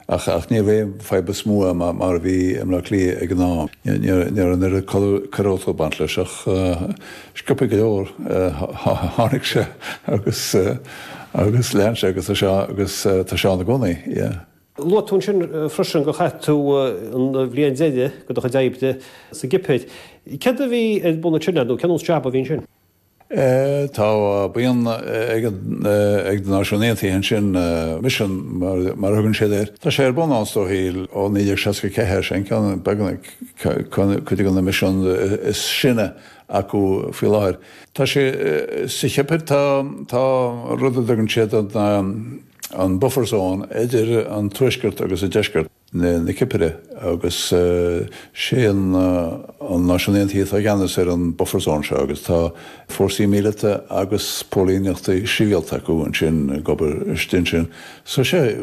Ach ní raibh fadhb chomh mór mar a bhí i mBleá Cliath ag an am. Ní raibh an oiread coiriúlacht ag baint leis ach sciobtha go leor tháinig sé agus lean sé agus tá sé ann i gcónaí. Luaigh tú ansin freisin gur chaith tú an bhliain deiridh de do chuid oibre sa gCipir. Céard a bhí ar bun ansin leat nó cén sórt jab a bhí ansin? Tá buíon ag na Náisiúin Aontaithe ansin, misean mar a thugann siad air. Tá sé ar bun ansin, sílim, ó 1964. Sin ceann, b'fhéidir, de na misean is sine acu faoi láthair. Tá sé, sa Chipir tá rud a dtugann siad an buffer zone idir an tuaisceart agus an deisceart. na Cipire agus sé an Náisiún Aontaithe atá i gceannas ar an buffer zone seo agus tá fórsaí míleata agus póilíneachta sibhialta acu ansin ag obair istigh ansin. So sé,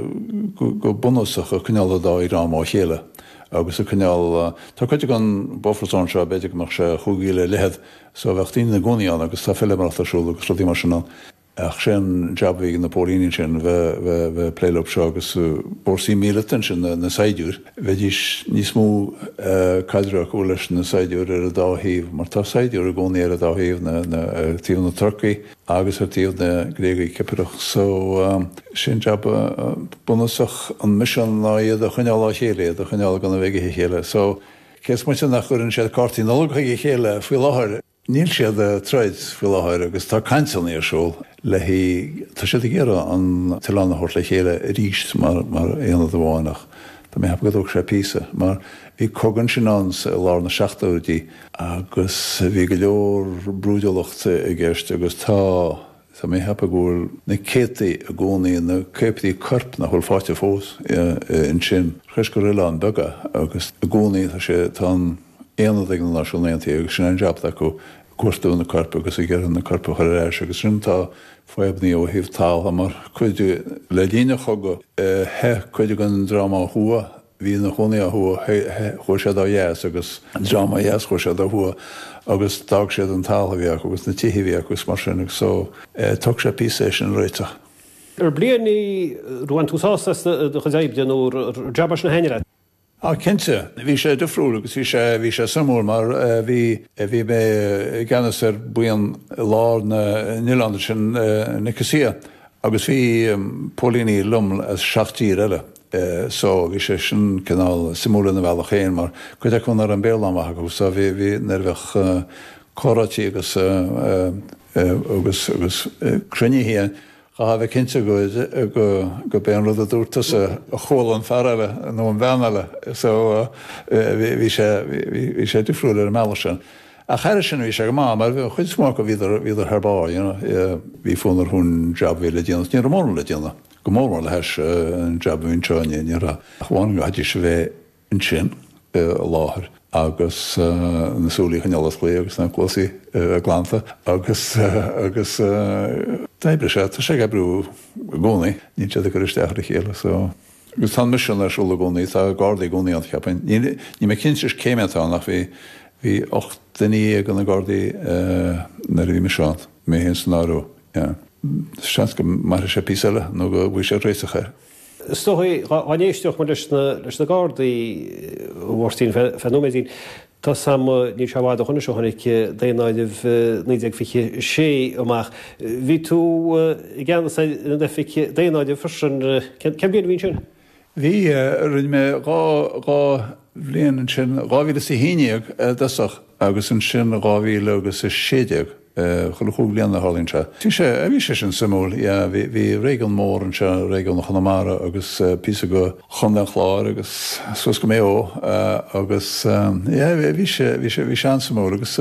go bunúsach, ag coinneáil an dá dhream ó chéile agus ag coinneáil, tá cuid den buffer zone seo, b'fhéidir go mbeadh sé chúig mhíle ar leithead, so bheadh daoine ina gcónaí ann agus tá feilméaracht ar siúl agus rudaí mar sin ann. Ach sé an jab a bhí ag na póilíní ansin, bheith ag plé leo seo agus fórsaí míleata ansin, na saighdiúir, bheidís níos mó caidreamh acu leis na saighdiúir ar an dá thaobh mar tá saighdiúir i gcónaí ar an dá thaobh, ar taobh na Turcaigh agus ar taobh na Gréagaigh Cipireacha. So sé an jab bunúsach an misean ná iad a choinneáil ó chéile, iad a choinneáil gan a bheith ag ithe a chéile. So cé is moite nach gcuireann siad cártaí Nollag chuig a chéile faoi láthair, Níl siad ag troid faoi láthair agus tá cainteanna ar siúl le haghaidh, tá siad ag iarraidh an t-oileán a thabhairt le chéile arís mar, mar aonad amháin ach tá mé ag ceapadh go dtógfaidh sé píosa mar bhí cogadh ansin ann sa, i lár na seachtóidí agus bhí go leor brúidiúlacht i gceist agus tá. Tá mé ag ceapadh go bhfuil na céadtaí i gcónaí na céadtaí coirp nach bhfuil fáighte fós ansin. Toisc gur oileán beag é agus i gcónaí tá sé tá an aonad ag na Náisiún Aontaithe agus sin an jab acu ag cuartú na coirp agus ag iarraidh na coirp a chur ar ais agus ansin tá fadhbannaí ó thaobh talamh mar cuid le linn an chogadh theith cuid den dream ó thuaidh bhí ina chónaí ó thuaidh, chuaigh siad ó dheas agus dream ó dheas chuaigh siad ó thuaidh agus d'fhág siad an talamh a bhí acu agus na tithe a bhí acu is mar sin agus so tógfaidh sé píosa é sin a réiteach. An bhliain sin ar bhain tú sásamh as do chuid oibre nó an jab as na haon rad? Ó cinnte, bhí sé difriúil agus bhí sé bhí sé suimiúil mar bhí bhí mé i gceannas ar buíon i lár an oileáin ansin i Nicosia agus bhí póilíní liom as seacht dtír eile eh so bhí sé sin cineál suimiúil ina bhealach féin mar cuid acu nach raibh an Béarla an-mhaith acu so bhí, bhí, nuair a bheadh eh comhráití agus eh, eh agus, agus eh cruinnithe chaithfeá a bheith cinnte go, go, go b'é an rud a dúirt tusa a chuala an fear eile nó an bhean eile so eh bhí, bhí sé, bhí, bhí sé difriúil ar an mbealach sin. Ach thairis sin bhí sé go maith mar chuid is mó acu bhíodar, bhíodar thar barr you know, bhí fonn orthu an job a bhí le déanamh, ní raibh mórán le déanamh. go mór mór le hais an jab a bhí anseo in Éirinn ach amháin go gcaithfidís a bheith ansin i láthair agus na súile a choinneáil osclaithe agus na cluasaí glanta agus agus d'oibrigh sé, tá sé ag oibriú i gcónaí, níl siad ag cur isteach ar a chéile so agus tá an misean ar siúl i gcónaí, tá Gardaí i gcónaí ann cheapfainn, níl, níl mé cinnte cé mhéad atá ann ach bhí, bhí ocht nduine dhéag ina nGardaí nuair a bhí mise ann, mé fhéin san áireamh. Sea. Seans go mairfidh sé píosa eile nó go bhfaighfear réiteach air. Is dócha é. Dhá n-aistreodh muid as na Gardaí, a Mháirtín, faoi nóiméidín, tá sé, níl sé i bhfad ó shoin, is ó tháinig daonáireamh 1926 amach. Bhí tú i gceannas ar an oifig daonáirimh freisin. Cén bhliain a bhí ann sin? Bhí, rinne mé dhá, dhá bhliain ansin, 2011 i dtosach agus ansin 2000 agus 16, chuile chúig bhliana a tharlaíonn sé. Bhí sé, bhí sé sin suimiúil, yeah, bhí, bhí réigiún mór anseo, réigiún Chonamara agus píosa de Chontae an Chláir agus suas go Maigh Eo agus yeah, bhí sé, bhí sé, bhí sé an-suimiúil agus.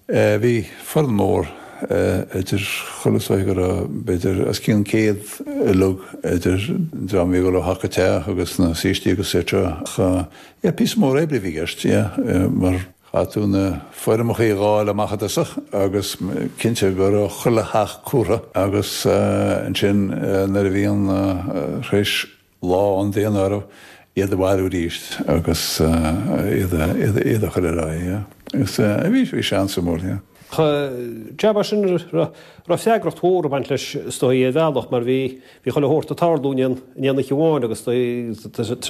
Bhí foireann mór idir chuile shórt bhí, go raibh b'fhéidir os cionn céad uileag idir dream a bhí ag dul ó theach go teach agus na saoistí etc. Ach yeah píosa mór oibre a bhí i gceist yeah mar. Chaithfeadh tú na foirmeachaí a dháileadh amach i dtosach agus cinnte go raibh chuile theach curtha agus ansin nuair a bhí an, théis lá an daonáirimh, iad a bhailiú arís agus iad a chur ar aghaidh. Agus bhí sé an-suimiúil, an jab sin, raibh freagracht mhór ag baint leis is dóigh ar bhealach mar bhí chuile shórt ag tarlú in aon oíche amháin agus